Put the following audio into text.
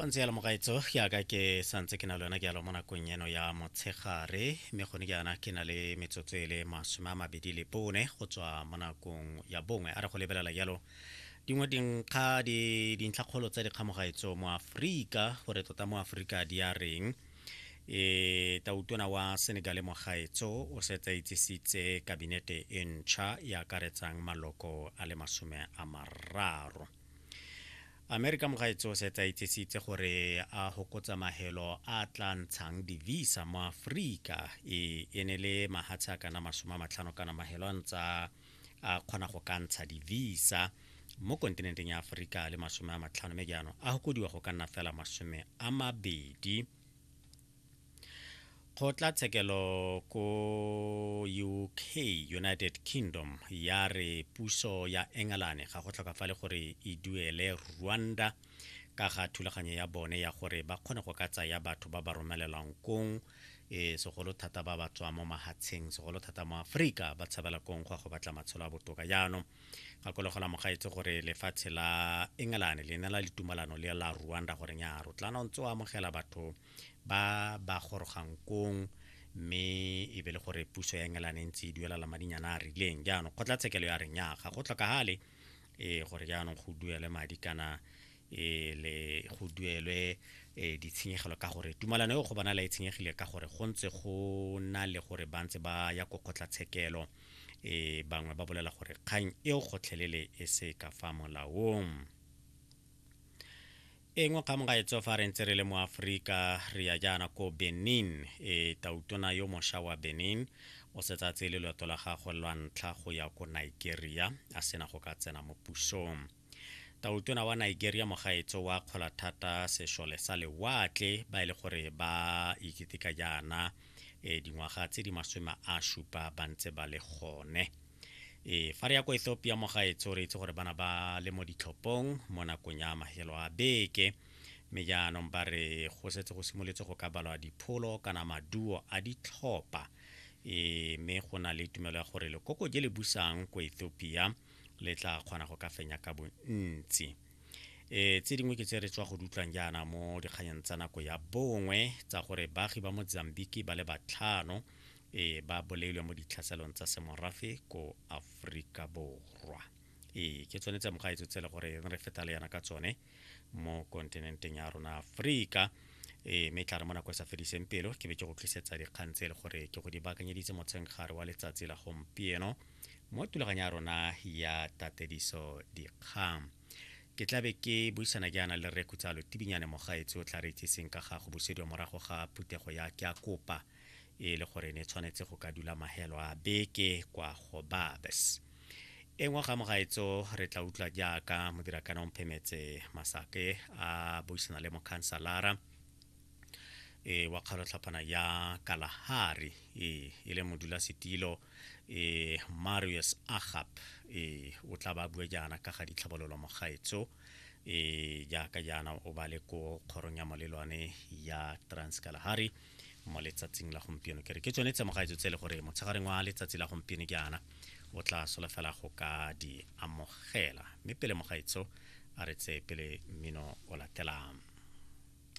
pontse ya lemogaetso yaka ke santse ke na le yona ke yalo mo nakong eno ya motshegare mme gone ke yana ke na le metsotso e le masome a mabedi le bone go tswa mo nakong ya bongwe a re go lebelela yalo dingwe dinkga dintlhakgolo tsa dikgamogaetso mo aforika gore tota mo aforika di a reng e tautona wa senegal mogaetso o setsa itsisitse kabinete e ntšha e akaretsang maloko a le masome a mararo amerika mogaetso se tsa itsesitse gore a hokotsa mahelo a tla ntshang divisa mo aforika e, e ne le mahatshe a kana masome a matlhano kana mahelo a ntsa a kgona go ka ntsha divisa mo kontinenteng ya aforika le masome a matlhano mme jaanong a gokodiwa go ka nna fela masome a mabedi kgotlatshekelo ko uk united kingdom ya re puso ya engelane ga go tlhokafale gore e duele rwanda ka ga thulaganyo ya bone ya gore ba kgone go ka tsaya batho ba ba romelelwang kong e segolo thata ba ba tswang mo mahatsheng segolo thata mo aforika ba tshabela kong go ya go batla matshelo a botoka jaanong gakologo la mogaetse gore lefatshe la engelane le ne la litumalano le la rwanda goreng ya ro tlana o ntse o amogela batho ba ba gorogang kong mme e be le gore puso ya engelane e ntse e duelela madinyana a rileng jaanong kgotlatshekelo ya reng ya ga go tlhokagale e gore jaanong go duele madi kana e le go duelwe e ditshenyegelo ka gore tumalano eo go bona la e tshenyegile ka gore go ntse go na le gore ba ntse ba ya ko kgotlatshekelo e bangwe ba bolela gore kgang eo gotlhelele e se ka fa molaong engwe kgang ga e tswa fa re ntse re le mo aforika re ya jaana ko benin e tautona yo mosha wa benin o setsa tsele loeto la gagwe lwa ntlha go ya ko nigeria a sena go ka tsena mo pusong Tautona wa Nigeria Mogaetso wa Kgolathata Sešole sa Lewatle ba e le gore ba iketeka jaana e dingwaga tse di masome a supa ba ntse ba le gone e fa re ya ko Ethiopia Mogaetso re itse gore bana ba le mo ditlhopong mo nakong ya mahelo a beke mme jaanong ba re go setse go simoletse go ka balwa dipholo kana maduo a ditlhopha e mme go na le tumelo ya gore lekoko je le busang ko Ethiopia le tla kgona go ka fenya ka bontsi e tse dingwe ke tse re tswa go dutlwang jaana mo dikganyeng tsa nako ya bongwe tsa gore baagi ba mozambique ba le batlhano e ba boleilwe mo ditlhaselong tsa semorafe ko aforika borwa e ke tsone tsa mogaetso tse le gore re feta le yana ka tsone mo kontinenteng ya rona aforika e mme tla re mo nako e sa fediseng pelo ke be ke go tlisetsa dikgang tse e le gore ke go di baakanyeditse motshengare wa letsatsi la gompieno mo tulaganya ya rona ya tatediso dikgang ke tlabe ke buisana ke yana le rre khutsalo tibinyane mogaetsi o tla re itseseng ka ga go busediwa morago ga phuthego ya ke a kopa e le gore ne tshwanetse go ka dula mahelo a beke kwa go babes e ngwe ga mogaetso re tla utlwa jaaka modirakana o mphemetse masake a buisana le mokhansalara e wa kgalotlhaphana ya kalahari e e le modulasetilo e marius agap e o tla ba bue jaana ka ga ditlhabololo mogaetso e jaaka jaana o ba le ko kgorong ya molelwane ya trans kalahari mo letsatsing la gompieno ke re ke tsone tsemogaetso tse e le gore motshegareng wa letsatsi la gompieno ke ana o tla solofela go ka di amogela mme pele mogaetso a re tseye pele mmino o latelang